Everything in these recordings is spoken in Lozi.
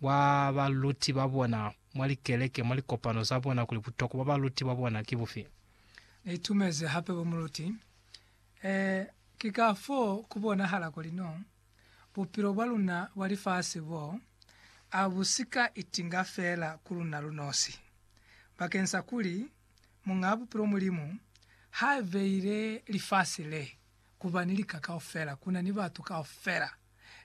bwa baluti ba bona mwa likeleke mwa likopano za bona kuli butokwa bwa baluti ba bona ki bufi. Ni itumezi hape bo muluti. Ee, ki ka foo ku bonahala kuli no bupilo bwa luna bwa lifasi bo a bu si ka itinga feela ku luna lu nosi. Bakeng sa kuli Muñaa Bupilo Mulimu ha beile lifasi le ku ba ni lika kaufela, ku na ni batu kaufela.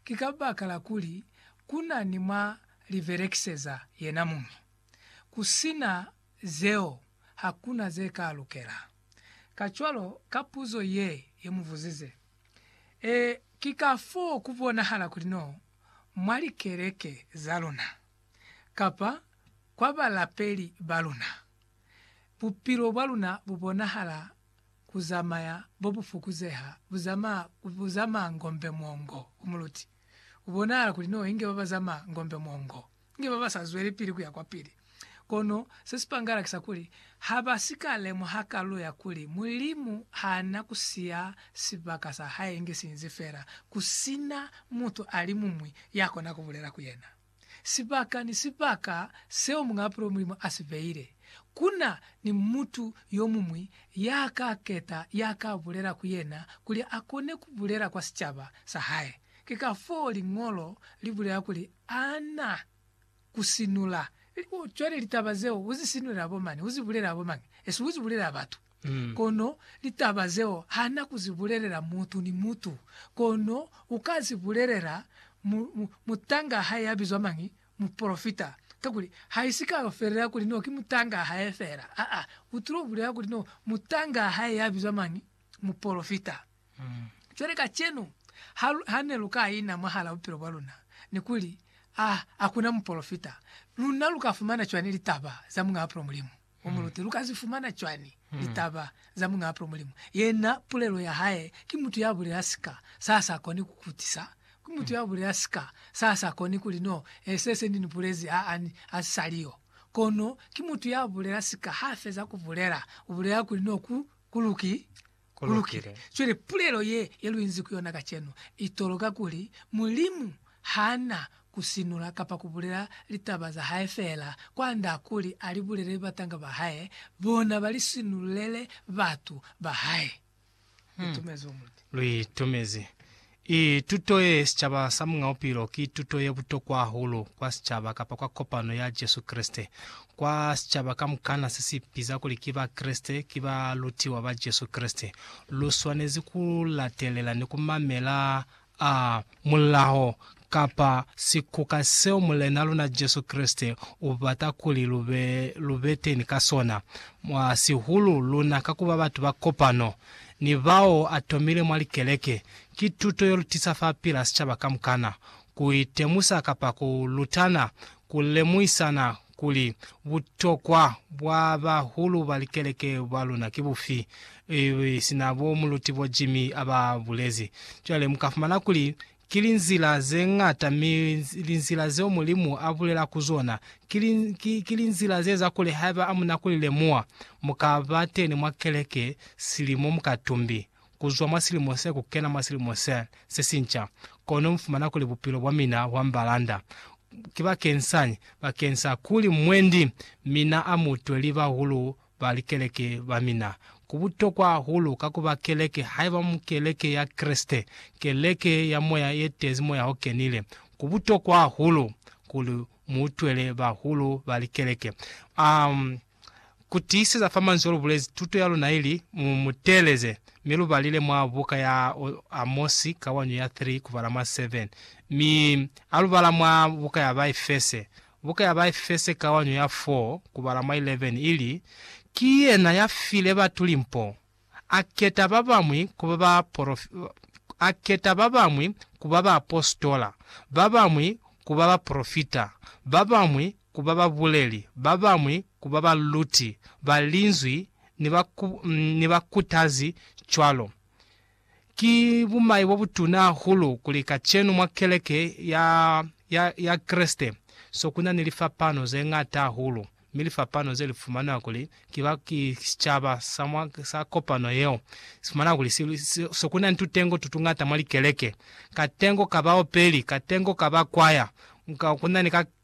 ki kabakala kuli ku na ni mwa li belekiseza yena muñi. Ku si na zeo, ha ku na ze ka lukela. Kacwalo, ka puzo ye ye mu buzize, Ee, ki kafoo ku bonahala kuli no mwa likeleke za luna, kapa kwa balapeli ba luna, bupilo bwa luna bu bonahala ku zamaya bo bu fukuzeha, bu zamaa, bu zamaa ngombe mwongo ku muluti. Ku bonahala kuli no inge ba ba zamaa ngombe mwongo, inge ba ba sa zwelepili ku ya kwapili. Kono se si pangala ki sa kuli, ha ba si ka lemuha kalulo ya kuli Mulimu ha na ku siya sibaka sa Hae inge si inzi fela ku si na mutu alimuñwi ya kona ku bulela ku Yena. Sibaka ni sibaka seo Muñaapulo Mulimu a si beile, ku na ni mutu yo muñwi ya ka keta ya ka bulela ku yena kuli a kone ku bulela kwa sicaba sa hae. Ki kafoo Liñolo li bulela kuli a na ku sinula. Cwale litaba zeo u zi sinulela bo mani? U zi bulela bo mañi? Esi u zi bulelela batu. Kono litaba zeo hana ku zi bulelela mutu ni mutu, kono u ka zi bulelela mu, mu, mutanga hae ya bizwa mañi? Mupolofita. Kakuli, haisi ka yo felela kuli no ki mutanga hae fela. Aa, u tulo bulela kuli no mutanga hae ya bizwa mañi? Mupolofita. Cwale kacenu, ha, ha ne lu ka ina mwahala bupilo bwa luna, ni kuli, Ah, hakuna mupolofita, luna lu ka fumana cwani litaba za Muñaa Pulo Mulimu? Mu mulute, lu ka zi fumana cwani litaba za Muñ'a Apro Mulimu? Yena pulelo ya hae ki mutu ya bulela sika sa sa koni ku kutisa, ki mutu ya bulela sika sa sa koni kuli no, e, se se ni ni bulezi ha a ni a si sa li yo. Kono ki mutu ya bulela sika ha feza ku bulela, u bulela kuli no ku, ku lukile. ku lukile. Cwale pulelo ye, ye lu inzi ku yona kacenu, i toloka kuli, Mulimu ha na ku sinula kapa ku bulela litaba za hae feela, kwand'a kuli a li bulelele batanga ba hae, bona ba li sinululele batu ba hae. Lu itumezi wo muluti. Lu itumezi. I. Tuto ye Sicaba sa Muñ'a Bupilo ki tuto ye butokwa hahulu kwa sicaba kapa kwa kopano ya Jesu Kreste. Kwa sicaba kamukana se si ipiza kuli ki Bakreste, ki balutiwa ba Jesu Kreste, lu swanezi ku latelela ni ku mamela a mulao kapa sikuka seo Mulena luna Jesu Kreste u bata kuli lu be, lu be teni ka sona, mwa sihulu luna ka ku ba batu ba kopano. ni bao a tomile mwa likeleke, ki tuto yo lutisa fa pila sicaba kamukana, ku itemusa kapa ku lutana ku lemuhisana kuli butokwa bwa bahulu ba likeleke ba luna ki bufi, sina bo Muluti bo Jimmy aba bulezi. Cwale mu ka fumana kuli Ki linzila ze ñata, mi linzila zeo Mulimu a bulela ku zona ki, ki, ki linzila ze za kuli haiba a muna ku li lemuha, mu ka ba teni mwa keleke silimo mukatumbi, ku zwa mwa silimo se ku kena mwa silimo se, se sinca, kono mu fumana kuli bupilo bwa mina bwa mbalanda. Kibakensañi? Bakeng sa kuli mwendi mina a mutwe li bahulu Ba likeleke ba mina. Ku butokwa hahulu ka ku ba keleke, haiba mu keleke ya Kreste, keleke ya moya ye tezi Moya o Kenile. Ku butokwa hahulu kuli mu utwele bahulu ba likeleke. Um, ku tiiseza fa manzwi o lu bulezi, tuto ya luna ili, Mu mu teeleze, mi lu balile mwa buka ya Amosi, kawanyo ya 3 kubala mwa 7, mi a lu bala mwa buka ya Baefese, Buka ya Baefese kawanyo ya 4 kubala mwa 11 ili, Ki yena ya file batu limpo, a keta ba bamwi ku ba ba a keta ba bamwi ku ba baapositola, ba bamwi ku ba bapolofita, ba bamwi ku ba babuleli, ba bamwi ku ba baluti ba Linzwi ni ba ni bakutazi, cwalo. Ki bumai bobutuna hahulu kuli kacenu mwa keleke ya, ya, ya Kreste so kuna ni lifapano zeñata hahulu, mi lifapano ze lifumanwa kuli ki ba, ki sicaba sa mwa, sa kopano yeo, sifumanwa kuli si, si, so kuna ni tutengo tutuñata mwa likeleke, katengo ka baopeli, katengo ka bakwaya, ka, kuna ni ka,